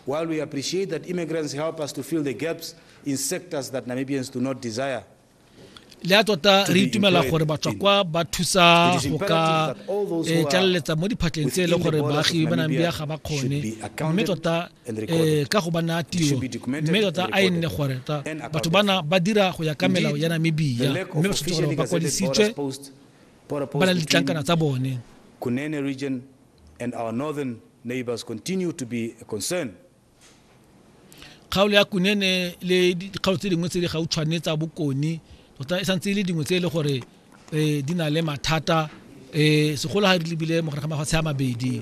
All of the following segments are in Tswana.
While we appreciate that immigrants help us to fill the gaps in sectors that Namibians do not desire, le a tota re itumela gore batswakwa ba thusa go ka eh, tlaleletsa mo diphatleng tse e le gore baagi ba namibia ga ba kgone mme tota eh, ka go ba naya tiro mme tota a e nne gore tota batho bana ba dira go ya ka melao ya namibia mme ba tshwanetse gore ba kwadisitswe ba na le ditlankana tsa bone Kgaolo ya Kunene le dikgaolo tse dingwe tse di gautshwane tsa Bokone tota e santse e le dingwe tse e le gore um di na le mathata um segolo ga re lebile mogare ga mafatshe a mabedi.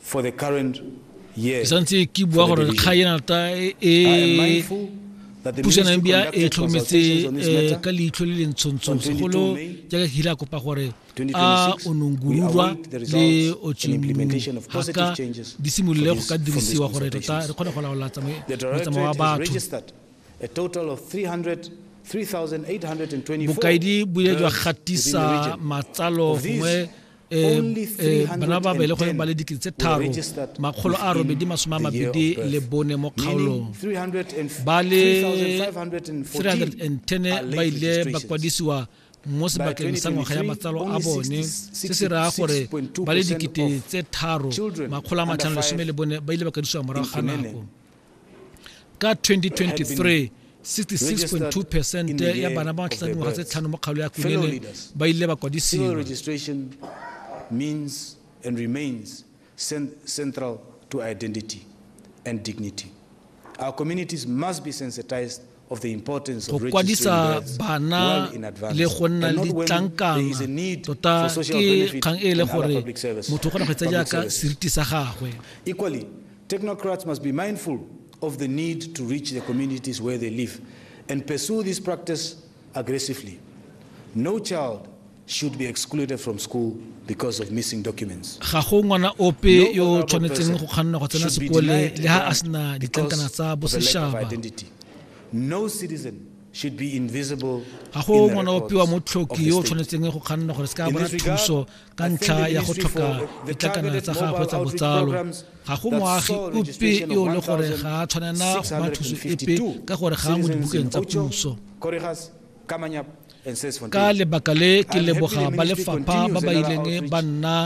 For the current year, ke santse ke bua gore kga e nata e pusanang bia e tlhokometse eh, ka leitlho le le ntshontso segolo jaaka ke ile a kopa gore a onongururwa le otshimhaka di simolole go ka dirisiwa gore tota re kgone go laola motsamao wa batho bokaedi bo ile jwa gatisa matsalo gongwe um bana ba belegweng ba le dikete tse tharo makgolo a robedi masome a mabedi le bone mo kgaolong ba le 310 ba ile ba kwadisiwa mo sebakeng sa ngwaga ya matsalo a bone se se raya gore ba le dikete tse tharo makgolo a matlhano lesome le bone ba ile ba kwadisiwa morago ga nako ka 2023 66.2 percent ya bana ba matlhla dingwaga tse tlhano mo kgaolo ya kunene ba ile ba kwadisiwa central to identity and dignity. Our communities must be sensitized go kwadisa bana le go nna le ditlankana tota ke kgang e le gore motho o kgona go etsa jaaka seriti sa gagwe equally technocrats must be mindful of the need to reach the communities where they live and pursue this practice aggressively no child should be excluded from school because of missing documents. Ga go ngwana ope yo o tshwanetseng go kganna go tsena sekole le ha a sena ditlankana tsa boseshaba. No citizen should be invisible. Ga go ngwana ope wa motlhoki yo o tshwanetseng go kganna gore se ka bona thuso ka ntlha ya go tlhoka ditlankana tsa gagwe tsa botsalo. Ga go moagi ope yo le gore ga a tshwanela go ba thuso epe ka gore ga a mo dibukeng tsa puso. ka lebaka le ke leboga ba lefapha ba ba ileng ba nna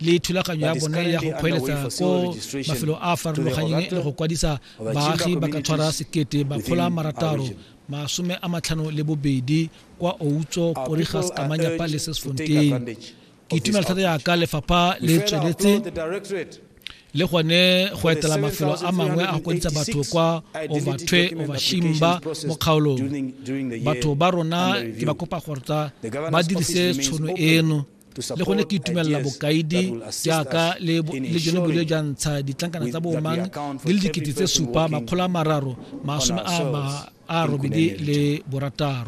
le thulaganyo ya bone ya go kgweletsa ko mafelo a a farologanyeng le go kwadisa baagi ba ka tshwara sekete bakgola marataro masome a matlhano le bobedi kwa outso korigas kamanyapa le sesfontein ke itumela thata yaka lefapha le tsweletse le gone go etela mafelo a mangwe a go kwadisa batho kwa overtwe overshimba mo kgaolong batho ba rona ke ba kopa gortsa ba dirise tshono eno le gone ke itumelela bokaidi jaaka le jone bole ja ntsha ditlankana tsa boomang di le dikete tse supa makgolo a mararo masome a robedi le borataro